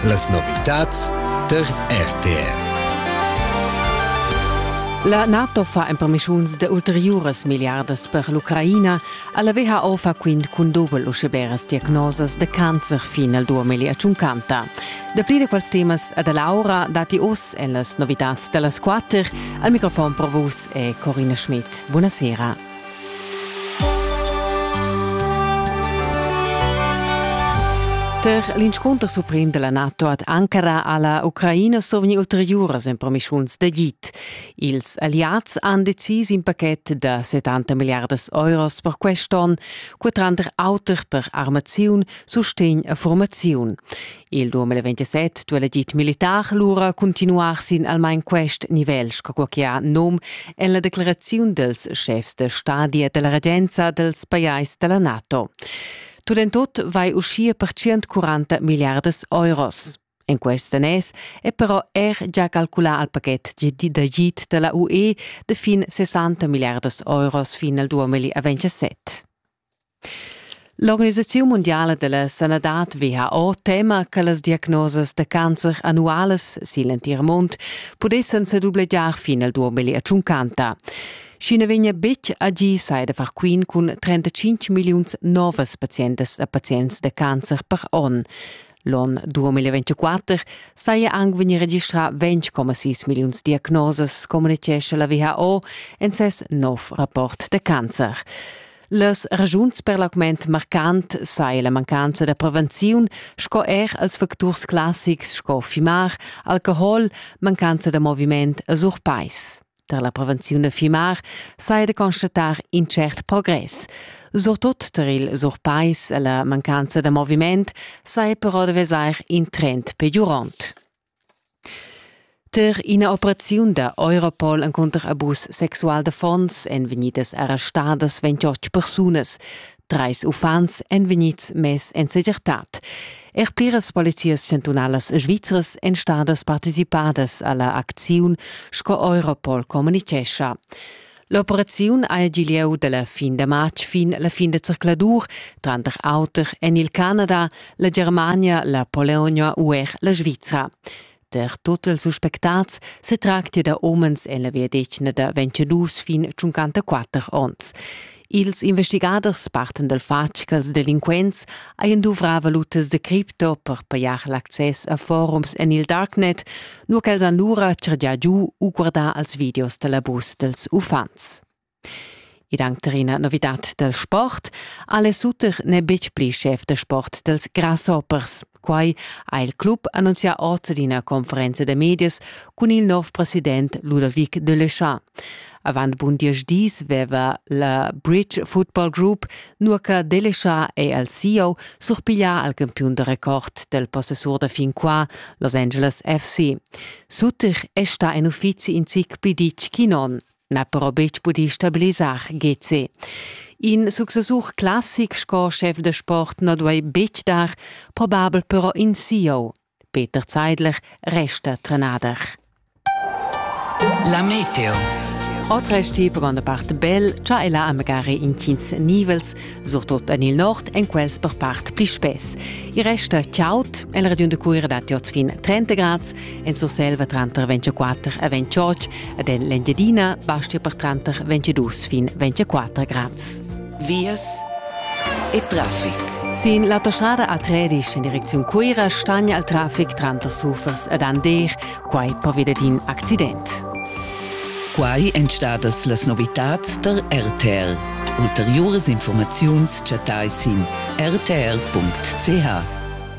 Las novitads tar RTR. La NATO fa empermischuns de ulteriuras milliardas per l'Ucraina, alla WHO fa quint cun dobel uscheberas diagnosas de cancer fin al 2050. Dapli de quels temas ad Laura dati oss en las novitats dellas quatter. Al microfon pro vus è Corina Schmidt. Buonasera. Per l'inscunter suprem della NATO ad Ankara ha la Ucraina sovni ulteriuras empromischuns d'agid. Ils alliads han decis in paquet da 70 milliardas euros per quest onn, qua tranter auter per armaziun, sustegn e formaziun. Il 2027 duel agid militar lura continuar sin almain quest nivel, sco che ha num en la decleraziun dels schefs de stadi e della regenza dels pajais della NATO. Tut en tot vai uschia per 140 miliardas euros. En quest nes è però er già calculà al paquet d'agid della UE de fin 60 miliardas euros fin al 2027. L'organisaziun mundiala dalla sanadad WHO tema che las diagnosas da cancer annualas sin l'entir mund pudessan sedublegiar fin al 2050. Sch'i na vegnia betg agì sai da far quint cun 35 milliuns novas pazientas e pazients da cancer per onn. L'on 2024 saja anc vegnì registrà 20,6 milliuns diagnosas, communitgescha la WHO en ses nov rapport da cancer. Las ragiuns per l'augment marcant sai la mancanza da prevenziun sco er als facturs classics sco fimar, alcohol, mancanza da moviment e surpais. tar la prevenziun da fimar saja da constatar in tschert progress. Surtut tar il surpais e la mancanza da moviment saja però da vesair in trend peggiurant. Tar ina operaziun da Europol encunter abus sexual da fons èn vegnidas arrestadas 28 persunas. Treis uffants èn vegnids mess en segirtad. Er pliras polizias chantunalas svizras èn stadas participadas a la acziun, sco Europol communitgescha. L'operaziun ha gì lieu da la fin da matg fin la fin da zercladur, tranter auter en il Canada, la Germania, la Polonia u er la Svizra. Der total suspectats se tracti da homens en la viadetgna da 22 fin 54 onns. Ils investigaders parten dal fatg ch'als delinquents hajan duvrà valutas de cripto per pajar l'access a forums en il darknet, nur ch'els han lura chargià giu u guardà als videos da l'abus dels uffants. Id anc tar ina novidad dal sport, Ale Sutter n'è betg pli schef da sport dals Grasshoppers. Quai ha il club annunzià oz ad ina conferenza da medias cun il nov president Ludovic de Leschat. Avant bun diesch dis veva la Bridge Football Group, nur che de Leschat è al CEO, surpiglià al campiun da record del possessur da fin qua, Los Angeles FC. Sutter è sta en uffizi in zic pli ditg che non. n'ha però betg pudì stabilisar GC. In successur classic sco schef da sport na duai betg dar, probabel però in CEO. Peter Zeidler resta trenader. La Meteo. Otres tip van da part bel, cha ella ha magari intgins nivels, surtot en il nord, en quels per part pli spess. Il resta ciaut, el radiun de Cuira dat oz fin 30 grads En Surselva tranter 24 e 28 ed en l'Engiadina bastia per tranter 22 fin 24 grads. Vias e traffic. Sin l'autostrada a Tredisch in direcziun Cuira stagna il traffic tranter Sufers ed Ander, quai pervia d'in accident. Quai èn stadas las novitads tar RTR. Ulteriuras informaziuns chattai sin rtr.ch.